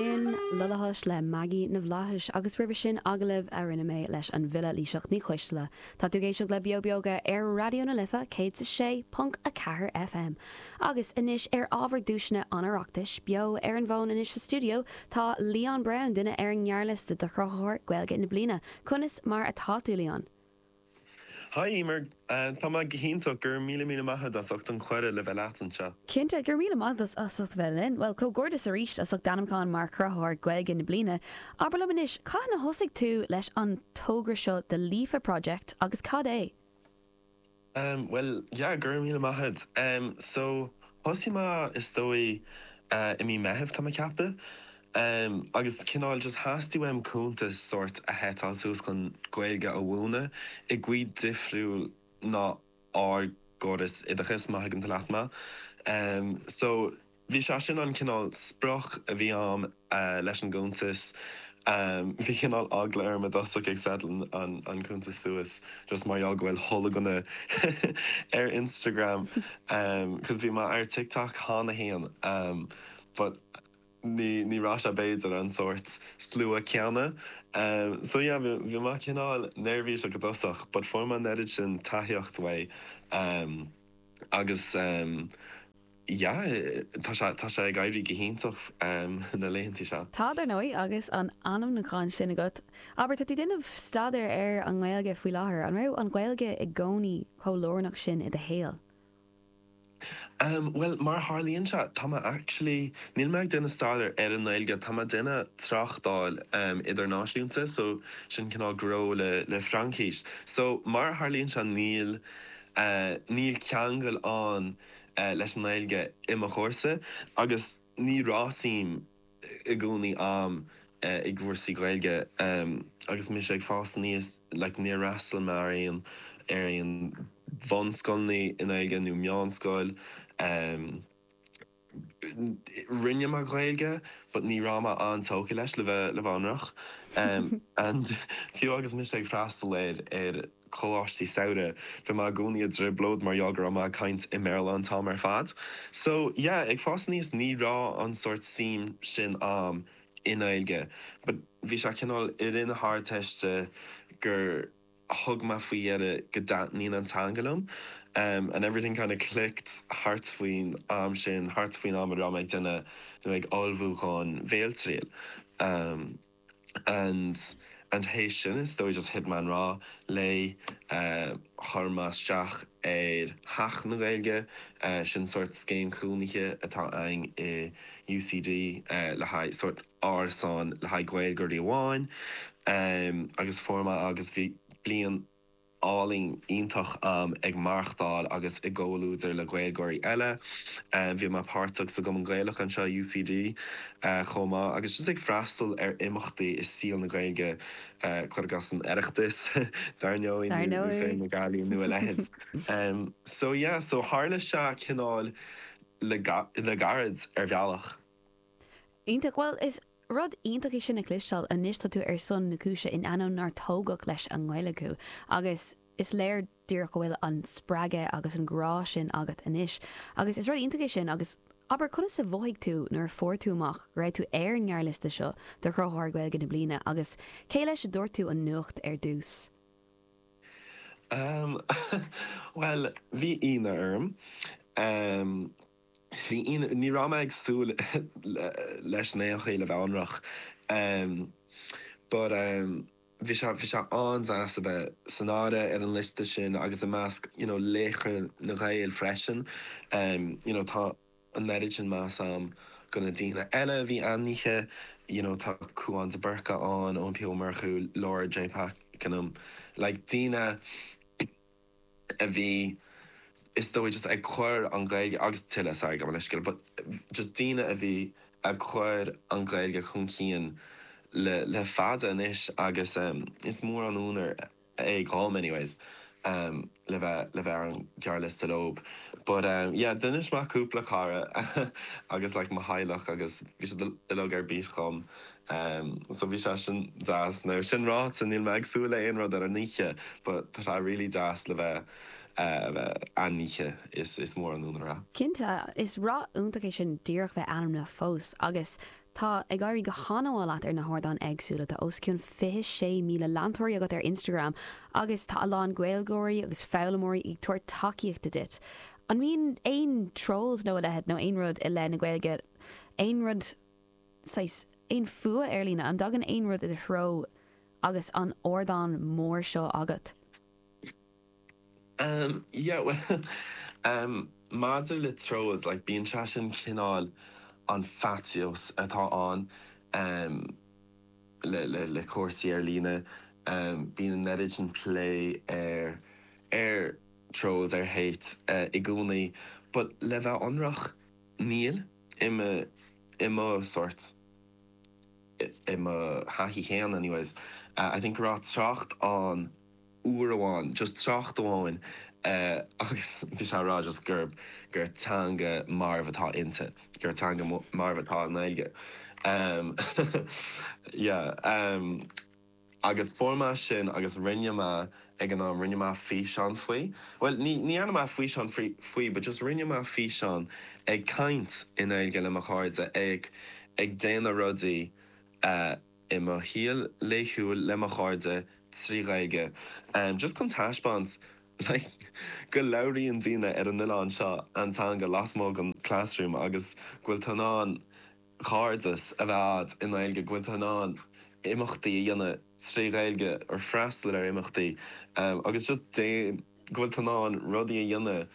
Sin Lollaphosh le Maggie na bhFlaitheas agus roimhe sin agallamh a rinne mé leis an bhfile Laoighseach Ní Choistealbha. Tá tú ag éisteacht le Beo Beoga ar Raidió na Life 106.4 FM. Agus anois ar ábhar duaiseanna an Oireachtais, beo ar an bhfón anois sa stiúideo tá Leon Brown, duine ar an ngearrliosta do Chruthaitheoir Gaeilge na Bliana. Conas mar atá tú, Leon? Hi Emer, tá mé go hiontach, go raibh míle míle maith a'd as ucht an cuireadh le bheith leat anseo. Cinnte, go raibh míle maith a'd as ucht a bheith linn. Bhuel, comhghairdeas arís as ucht d'ainmniúchán mar Chruthaitheoir Gaeilge na Bliana. Abair liom anois, cathain a thosaigh tú leis an togra seo The Líofa Project agus cad é? Bhuel, yeah, go raibh míle maith a'd. So, thosaigh mé, is dóigh, i mí Meithimh, tá mé ag ceapadh. Em, agus cineál just theastaigh uaim cuntas sórt a shetáil suas chun Gaeilge a mhúineadh i gcaoi difriúil ná ár gcóras oideachais, má thuigeann leat mé. Em, so, bhí sé sin an cineál sprioc a bhí a'm, eh, leis an gcuntas. Em, bhí cineál eagla orm i dtosach ag setáil an, an cuntas suas just mar gheall go bhfuil hollagna ar Instagram, em, 'cause bhí mé ar TikTok cheana fhéin, em, but. Ní raibh sé, b'fhéidir, an sórt slua céanna. So yeah, bhí mé cineál neirbhíseach i dtosach but fuair mé an oiread sin tacaíocht uaidh agus yeah, tá sé ag éirí go hiontach na laethanta seo. Tá, dar ndóigh, agus an ainmniúchán sin agat. Abair, tá tú ag déanamh staidéir ar an nGaeilge faoi láthair. An raibh an Ghaeilge i gcónaí chomh lárnach sin i do shaol? Ahem, bhuel, mar a tharlaíonn sé, tá mé actually, níl mé ag déanamh staidéar ar an nGaeilge, tá mé ag déanamh tráchtáil idirnáisiúnta, so, sin cineál gnó le Fraincis. So, mar a tharlaíonn sé, níl, níl ceangal ann leis an nGaeilge i mo chúrsa, agus ní raibh suim i gcónaí a'm i gcúrsaí Gaeilge agus mise ag fás aníos like níor fhreastail mé ar aon ar aon bhunscoileanna i nGaeilge nó meánscoil em rinne mé Gaeilge but ní raibh mé an-tógtha leis le bheith le bheith ionraic em and fiú agus mise ag freastal ar ar coláistí samhraidh. Bhí mé i gcónaí i dtrioblóid mar gheall go raibh mé ag caint i mBéarla an t-am ar fad. So, yeah, ag fás aníos ní raibh an sórt suim sin a'm i nGaeilge but bhí sé cineál i rith na hArdteiste gur thug mé faoi deara go dtaitníonn an teanga liom em and everything kind of clicked thart faoin am sin, thart faoin am a raibh mé ag déanamh nó ag ullmhú dhon bhéaltriail. em. and and théis sin is dóigh just thit mé i ngrá léi chuir mé isteach ar Theach na Gaeilge sin sórt scéim chónaithe atá againn i UCD le haghaidh sórt árasán le haghaidh Gaeilgeoirí amháin agus fuair mé áit agus bhí bliain álainn iontach ag maireachtáil agus i gcomhluadar le Gaeilgeoirí eile. Bhí mé páirteach sa gCumann Gaelach anseo i UCD chomh maith agus just ag freastal ar imeachtaí i saol na Gaeilge, cuir i gcás an tOireachtas, dar ndóigh, nó Féile na Gealaí nó a leithéid. So yeah, so tharla sé cineál le gairid ar bhealach. Iontach. Bhuel, is rud iontach é sin a chloisteáil, anois tá tú ar son na cúise in ainneoin nár tógadh leis an nGaeilge thú agus is léir díreach go bhfuil an spreagadh agus an grá sin agat anois agus is rud iontach é sin agus abair, conas a mhothaigh tú nuair a fuair tú amach go raibh tú ar an ngearrliosta seo do Chruthaitheoir Gaeilge na Bliana agus cé leis a dúirt tú an nuacht ar dtús? Ahem, bhuel, bhí ionadh orm. Ní raibh mé ag súil leis in aon chor, le bheith ionraic, but bhí sé, bhí sé an-deas a bheith san áireamh ar an liosta sin agus i measc you know laochra na Gaeilge freisin, you know tá an oiread sin meas a'm do na daoine eile a bhí ainmnithe, you know tá Cúán de Búrca ann, Eoin P Ó Murchú, Laura J Pakenham, like daoine. a bhí, is dóigh, just ag cur an Ghaeilge, agus tuilleadh, sorry, gabh mo leithscéal, but just daoine a bhí ag cur an Ghaeilge chun cinn le, le fada anois agus is mór an onóir é dhom anyways le bheith, le bheith ar an ghearrliosta leob but yeah, d'inis mé do chúpla cara agus like mo theaghlach agus bhí siad uilig ar bís dhom Em, so bhí sé sin deas. Now, sin ráite, níl mé ag súil le aon rud ar an oíche, but tá sé really deas le bheith, eh, a bheith ainmnithe, is, is mór an onóir é. Cinnte, is éacht iontach é sin díreach bheith ainmnithe fós, agus tá ag éirí go han-mhaith leat ar na hardáin éagsúla, tá os cionn 26,000 leantóirí agat ar Instagram agus tá a lán Gaeilgeoirí agus foghlaimeoirí ag tabhairt tacaíochta duit. An mbíonn aon trolls nó a leithéid, nó aon rud i leith na Gaeilge, aon rud? saghas, aon fuath ar-líne, an dtagann aon rud i do threo agus an ardán mór seo agat? Em, yeah, bhuel, em, maidir le trolls, like, bíonn sé sin cineál an faitíos atá ann, em, le, le, le cúrsaí ar-líne, em, bíonn an oiread sin plé ar, ar trolls, ar hate, eh, i gcónaí, but le bheith ionraic, níl. I, i mo sórt, i mo thaithí féin anyways, I think go raibh trácht ann uair amháin, just trácht amháin agus bhí sé á rá just gurb, gur teanga mharbh atá inti, gur teanga mharbh atá i nGaeilge. Yeah. Agus fuair mé sin agus rinne mé, ag an am, rinne mé físeán faoi. Bhuel, ní dhearna mé físeán faoi but just rinne mé físeán ag caint i nGaeilge le mo chairde, ag ag déanamh rudaí i mo shaol laethúil le mo chairde trí Ghaeilge just chun taispeáint like go labhraíonn daoine ar an oileán seo an teanga lasmuigh den classroom agus go bhfuil tú in ann cairdeas a bheith a'd i nGaeilge, go bhfuil tú in ann imeachtaí a dhéanamh trí Ghaeilge or freastal ar imeachtaí agus just déan, go bhfuil tú in ann rudaí a dhéanamh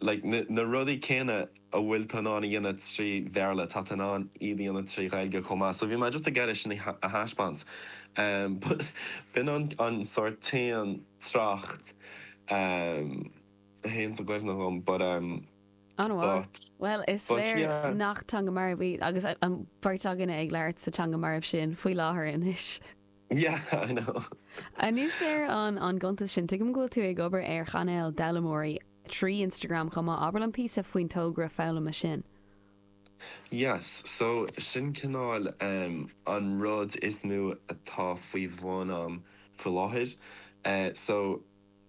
like na rudaí céanna a bhfuil tú in ann a dhéanamh trí Bhéarla, tá tú in ann iad a dhéanamh trí Ghaeilge chomh maith. So bhí mé just ag iarraidh sin a thaispeáint but b'in an sórt t-aon trácht a thaganns i gcuimhne dhom but. An bhfuil? But, Bhuel, is léir nach teanga mharbh í, agus an bheirt againne ag labhairt sa teanga mharbh sin faoi láthair anois. Yeah, I know. Anuas ar an an gcuntas sin, tuigim go bhfuil tú ag obair ar chainéal d'fhoghlaimeoirí trí Instagram chomh maith. Abair liom píosa faoin togra foghlama sin. Yes, so sin cineál em an rud is mó atá faoi bhun a'm faoi láthair. Eh so.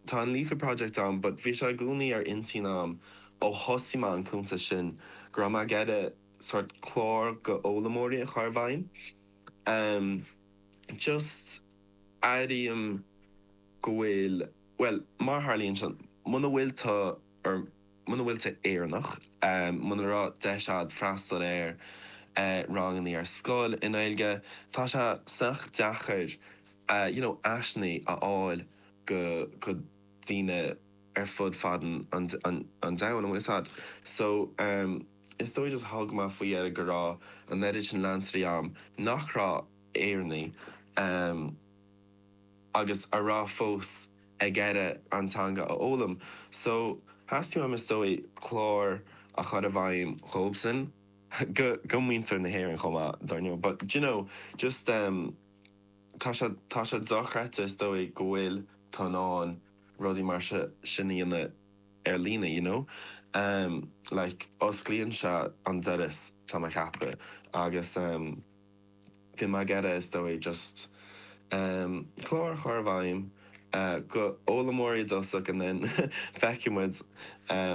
Tá an Líofa Project ann but bhí sé i gcónaí ar intinn a'm ó thosaigh mé an cuntas sin go raibh mé ag iarraidh sórt clár go fhoghlaimeoirí a chur i bhfeidhm. Em. just airím go bhfuil, bhuel, mar a tharlaíonn sé, muna bhfuil tú, or muna bhfuil tú Éireannach, em, muna raibh deis a'd freastal ar, eh, rangannaí ar scoil i nGaeilge, tá sé sách deacair, eh, you know, áiseannaí a fháil. go daoine ar fud fad an domhain an bhfuil fhios agat so is dóigh just thug mé faoi dheara go raibh an oiread sin leantóirí a'm nach raibh Éireannach ehm agus a raibh fós ag iarraidh an teanga a fhoghlaim so theastaigh uaim is dóigh clár a chur i bhfeidhm dhóibhsan go go muintir na hÉireann chomh maith dar ndóigh but d'you know just ehm Tá sé dochreidte is dóigh go bhfuil tú in ann rudaí mar seo sin a dhéanamh ar líne, you know. Like, osclaíonn sé an doras, tá mé ag ceapadh, agus bhí mé ag iarraidh, is dóigh, just clár a chur i bhfeidhm. d'fhoghlaimeoirí i dtosach anonn, feicfidh muid,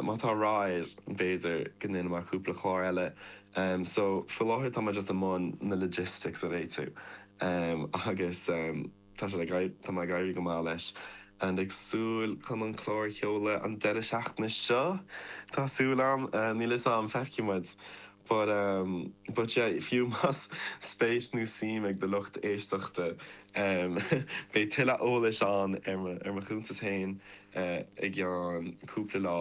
má tá ráchairt air, b'fhéidir, go ndéanfaidh mé cúpla clár eile. So, faoi láthair tá mé just i mbun na logistics a réitiú agus tá sé le gairid, tá mé ag éirí go maith leis, ag súil chun an clár a sheoladh an deireadh seachtaine seo, tá súil agam, níl 'fhios a'm, feicfidh muid. But um but yeah, fiú más spéis nó suim ag do lucht éisteachta em beidh tuilleadh eolais ann ar mo ar mo chuntas féin eh i gceann cúpla lá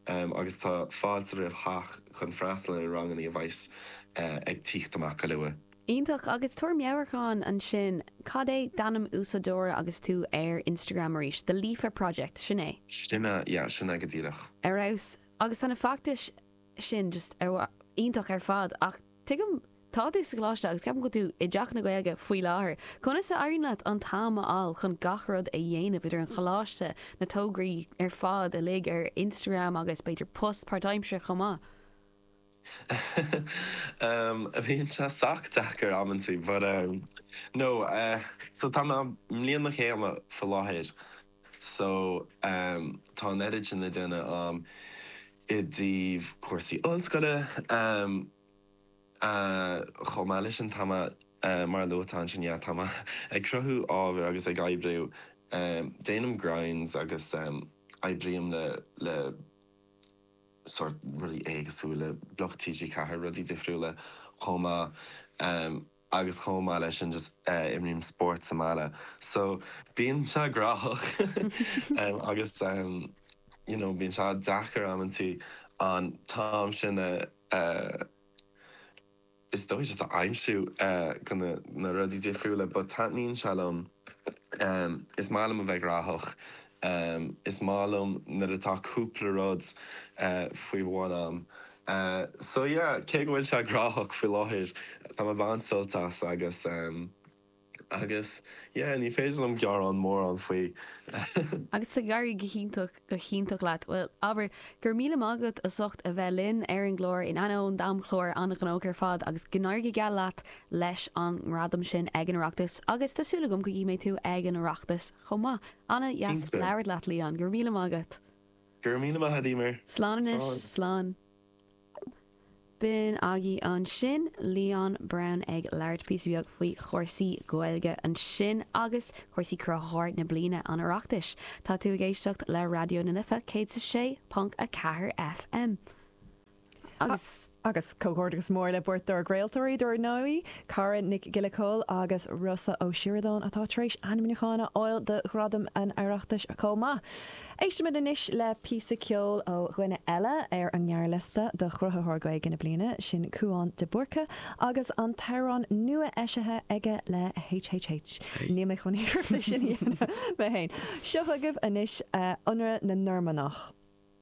em agus tá fáilte roimh chách chun freastal ar na ranganna a bheas ag tíocht amach go luath. Iontach, agus tabhair meabhrachán ansin, cad é d'ainm úsáideora agus tú ar Instagram arís? The Líofa Project, sin é? Sin é, yeah, sin é go díreach. Ar fheabhas. Agus tá na feachtais sin just an-mhaith, iontach ar fad ach tuigim, tá tú sa gcoláiste agus ceapaim go bhfuil tú i dTeach na Gaeilge faoi láthair, conas a éiríonn leat an t-am a fháil chun gach rud a dhéanamh idir an choláiste, na tograí ar fad uilig ar Instagram agus b'fhéidir post páirtaimseartha chomh maith? Ah, bíonn sé sách deacair amantaí but eh, no eh, so tá mé i mbliain mo chéime faoi láthair, So, em, tá an oiread sin le déanamh, em, i dtaobh cúrsaí ollscoile, em, eh, chomh maith leis an t-am a, eh, mar a luadh, tá ansin, yeah, tá mé ag cruthú ábhair agus ag oibriú, em, déanaim grinds agus, em, oibrím le, le sórt rudaí éagsúla, le Bloc TG4, rudaí difriúla chomh maith, em. agus chomh maith le sin just imrím spórt sa mbaile so bíonn sé gnóthach agus you know bíonn sé deacair amantaí an t-am sin a is dóigh just a aimsiú go na na rudaí difriúla but taitníonn sé liom is maith liom a bheith gnóthach is maith liom nuair atá cúpla rud faoi bhun a'm. Eh so yeah, cé go bhfuil sé gnóthach faoi láthair, tá mé ag baint sult as agus em agus yeah ní féidir liom gearán mórán faoi. Agus tá ag éirí go hiontach go hiontach leat. Bhuel, Éabha, go raibh míle maith agat as ucht a bheith linn ar an gclár in ainneoin d'amchlár an-ghnóthach ar fad agus go n-éirí go geal leat leis an ngradam sin ag an Oireachtas agus tá súil agam go gcífidh mé tú ag an Oireachtas chomh maith. Cinnte. An-dheas labhairt leat Leon, go raibh míle maith agat. Go raibh míle maith, a Emer. Slán anois, slán. B'in aghaidh ansin, Leon Brown ag labhairt píosa beag faoi chúrsaí Gaeilge ansin agus cúrsaí Cruthaitheoir na Bliana an Oireachtais. Tá tú ag éisteacht le Raidió na Life 106.4 FM. Agus comhghairdeachas mór le beirt dár gcraoltóirí dár ndóigh, Cara Nic Giolla Chomhaill agus Rossa Ó Sioradáin, atá tar éis ainmniúcháin a fháil do Ghradaim an Oireachtais chomh maith. Éistimid anois le píosa ceoil ó dhuine eile ar an ngearrliosta do Chruthaitheoir Gaeilge na Bliana, sin Cúán de Búrca agus an t-amhrán nua-eisithe aige le HHH. Níl mé chun iarracht é sin a dhéanamh mé féin. Seo chugaibh anois Ionradh na Normannach.